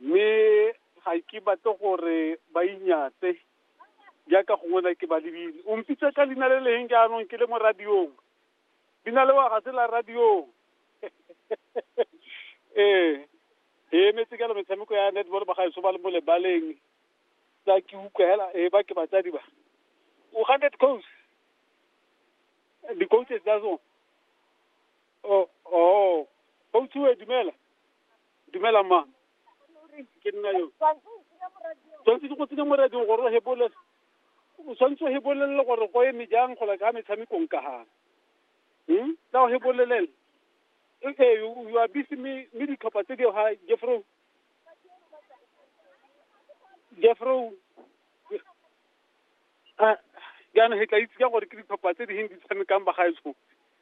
mme ga ke batle gore ba inyatse jaaka gongwe na ke ba lebile o mpitsa ka leina le leng jaanong ke le mo radiong leina le wa ga se la radiong ee e emetse ka metshameko ya netball ba gaetso ba le mo lebaleng tsa ke utlwa hela e ba ke batsadi ba o hundred coast di-coaches tsa tsone Oh, oh, Bouthiwe, dumela. Dumela mma. Ke nna yo. Tshwanetse ke go tsenya mo radiong gore o hebole. O tshwanetse o hebolelele gore go eme jang go la ka metshamekong ka ha. Hmm? Tla o hebolelele. Okay, you, you are busy me, me ditlhopha tse di ha Jeffro. Jeffro. Ah, jaanong he tla itse ka gore ke ditlhopha tse di heng di tshamekang bagaetsho.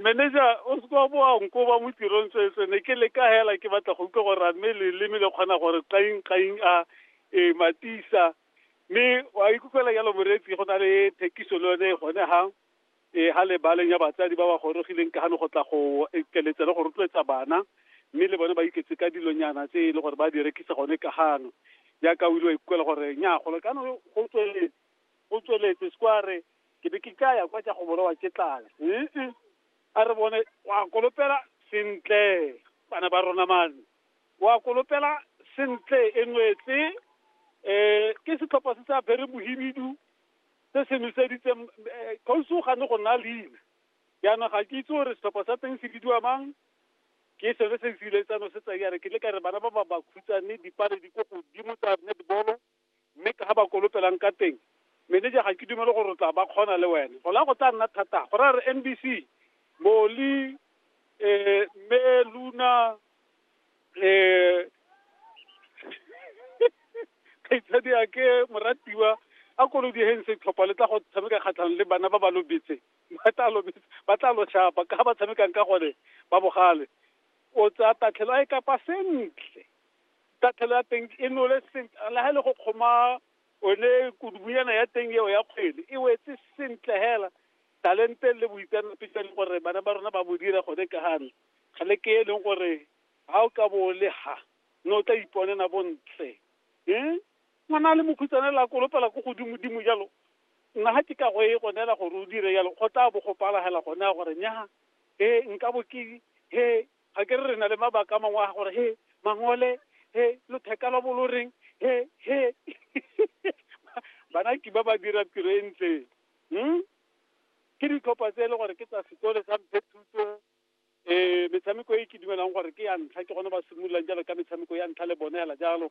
manager o se kwa boa nkoba mo tirong tswetswe ne ke le ka hela ke batla go utlwa gore a mme leleme le kgona gore qaing qaing a e matisa mme wa ikutlwela jalo moreetsi go na le thekiso le yone gone ga e ha le baleng ya batsadi ba ba gorogileng ka gane go tla go ekeletsa le go rotloetsa bana mme le bone ba iketse ka dilonyana tse e le gore ba di rekisa gone ka gano jaaka o ile wa ikutlwela gore nya golo kana go tsweletse O tsweletse siko a re, ke be ke ka ya kwa tsa go bolawa ke tlala. Ee, a re bone, wa kolopela sentle bana ba rona mane. Wa kolopela sentle e nwetse. Um ke setlhopha se sa bere mohibidu se se noseditseng kgosi o gane go nna leina. Jaanong ga ke itse gore setlhopha sa teng se bidiwa mang, ke sone se se iletsano se tsa ya re ke le ka re bana ba ba ba khutsa mme dipale di ko godimo tsa netball-o. mme ka ga ba kolopelang ka teng meneja ga ke dumele gore o tla ba kgona le wene go la go tla nna thata go ra re nbc moli um mme luna um kgaitsadi a ke moratiwa a kolodi heng setlhopha le tla go tshameka kgatlhanong le bana ba ba lobetse ba tla lobetse ba tla lo shapa ka ba tshamekang ka gone ba bogale o tsaya tatlhelo a e kapa sentle tatlhelo ya teng e nole sentle le ga e le go kgoma one kudubunyana ya teng eo ya kgwele e wetse sentle hela talente le boitseanape jwa leng gore bana ba rona ba bo dira gone ka gane ga le ke e leng gore ga o ka bo le ha ne o tla iponela bontle um ngwana a le mokhutsana la kolopela ko godimodimo jalo nna ga ke ka go e gonela gore o dire jalo go tla bo go palagela gone ya gore nyaga e nka bo ke he ga ke re re na le mabaka a mangwe a gore he mangole he lotheka lwa bolo reng he he bana ke ba ba dira tiro e ntle hmm? ke ditlhopha tse e le gore ke tsa sekole sa mphe thuto um metshameko e ke dumelang gore ke ya ntlha ke gone ba simololang jalo ka metshameko ya ntlha le bone fela jalo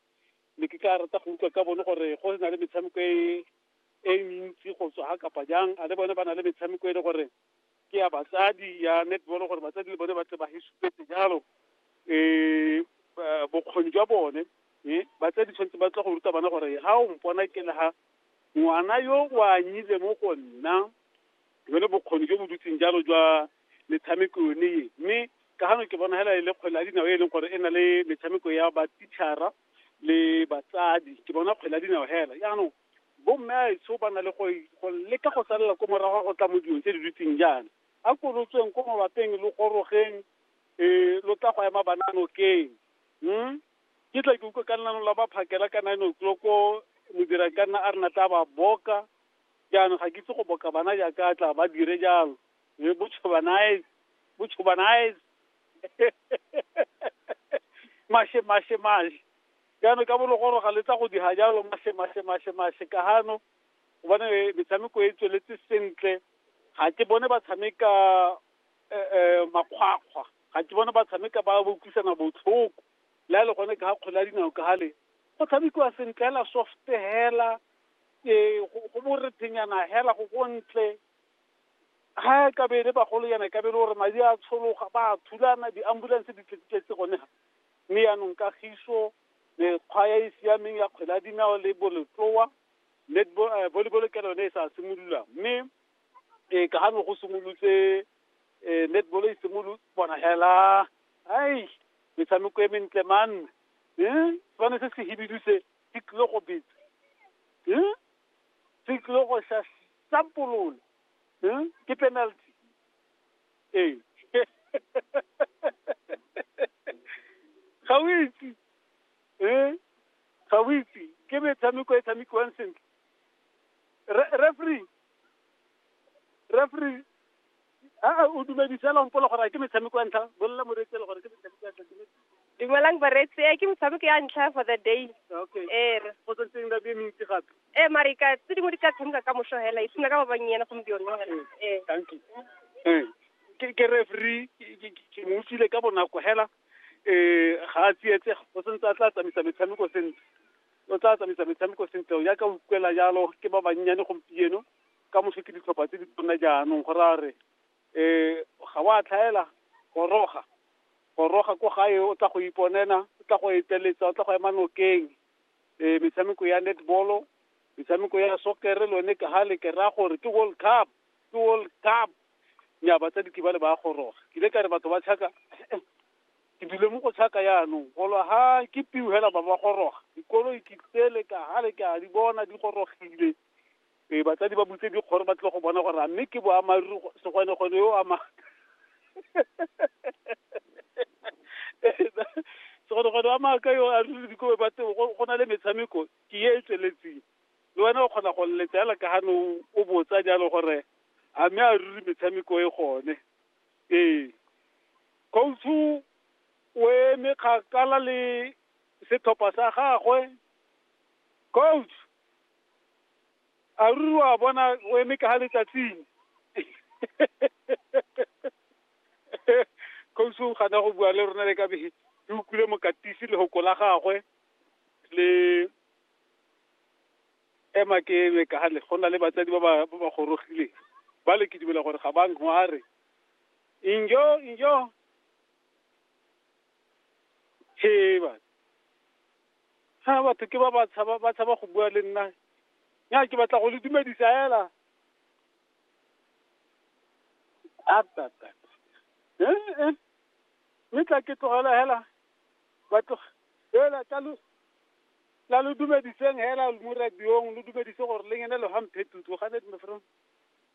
ne ke ka rata go utlwa ka bone gore go na le metshameko e e mentsi go tswa ga kapa jang a le bone ba na le metshameko e le gore ke ya batsadi ya netball gore batsadi le bone ba tle ba he supetse jalo um bokgoni jwa bone e batsadi tshwanetse ba tla go ruta bana gore ha o mpona ke le ha ngwana yo o anyile mo go nna jone bokgoni jo bo dutseng jalo jwa metshameko yone e mme ka gano ke bona hela e le kgwele ya dinao e leng gore e na le metshameko ya batitšhara le batsadi ke bona kgwele ya dinao hela jaanong bomme a etsho ba na le go go leka go salela ko morago ga go tla mo dilong tse di dutseng jaana a kolotsweng ko mabapeng lo gorogeng um lo tla go ema bana nokeng um ke tla ke utlwe ka nnano la ba phakela ka nine o'clock modira ka nna a re na tla ba boka jaanong ga ke itse go boka bana jaaka a tla ba dire jalo e botšhobanae botšhobanae mashe mashe mashe ya me ka bo legoroga le tsa go diga jalo mashe mashe mashe mashe ka hano gobane metshameko e tsweletse sentle ga ke bone ba tshameka eh, eh, makgwakgwa ga ke bone ba tshameka ba bokwisana botlhoko le a le gone ka ga kgole ya dinao ka gale go tshamekiwa sentle hela soft hela um go borethenyana hela go gontle ga e kabele bagolo yana e kabele gore madi a tshologa ba thulana di-ambulance di tletse gone ga Mme yaanong kagiso, mekgwa ya e siameng ya kgwele ya dinao le bolotloa, netball, eh, volleyball ke yone e sa simololang. Mme eh, ka gano go simolotse eh, netball e simolotse bona hela ai metshameko e mentle man eh sefane se se hibidu se se tlile go betsa eh se tlile go sa sampolola eh ke penalty ee ga o itse ee ga o itse ke metshameko e tshamekiwang sentle Re- referee referee a o dumedisela mpolo gore a ke metshameko ya ntlha bolela moreetsi ele gore ke metshameko ya ntlha ke metse- dumelang bareetsi e ke metshameko ya ntlha for the day okay ee re go tsentseng la be mentsi gape Eh, mare ka tse dingwe di ka tshameka ka moso hela e sena ka ba bannyena gompieno hela eh danki Eh, ke ke referee ke- ke- ke- ke mo utlwile ka bonako hela eh ga a tsietsega o sentse a tla tsamaisa metshameko sentle o tla tsamaisa metshameko sentle ya ka utlwela jalo ke ba bannyane gompieno ka moso ke ditlhopha tse di tsona jaanong go ra re eh ga wa tlhaela goroga goroga ko gae o tla go iponena o tla go eteletsa o tla go ema nokeng e metshameko ya netball-o metshameko ya sokere le one ha le ke raya gore ke world cup ke world cup nya batsadi ke ba le ba goroga ke ile ka re batho ba tšhaka ke dule mo go tšhaka yaanong golo ha ke piu hela ba ba goroga dikolo ke tsele ka ha le ke a di bona di gorogile Ee, batsadi ba butse dikgoro ba tle go bona gore a mme ke boammaaruri go- segwenegwene yo o ama segwenegwene wa maaka yo a ruri dikobe ba teng go go na le metshameko ke e e tsweletseng le wena o kgona go lletsa fela ka gane o- o botsa jalo gore a mme a ruri metshameko e gone ee coach-u o eme kgakala le setlhopha sa gagwe coach a ruri wa bona o eme ka ga letsatsing kgosi o gana go bua le rona le ka be re utlwile mokatisi le goko la gagwe le ema ke eme ka gale go na le batsadi ba ba ba ba gorogileng ba le ke dumela gore ga ba ngware injo injo heba Ha batho ke ba ba tshaba ba tshaba go bua le nna. Nya ke batla go le dumedisa hela. Apa apa. Eh eh. Mme tla ke tlogela hela. Ba tlo hela ka lu la lu dumediseng hela mo radiong lu dumedise gore le ngene lo hamphe tutu ga ne me from.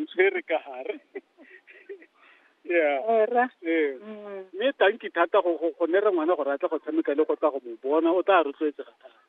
ntshwere ka gare yeah era ee mm. mme tanki thata go go go ne re ngwana gore a tle go tshameka le go tla go mo bona o tla rotloetsega thata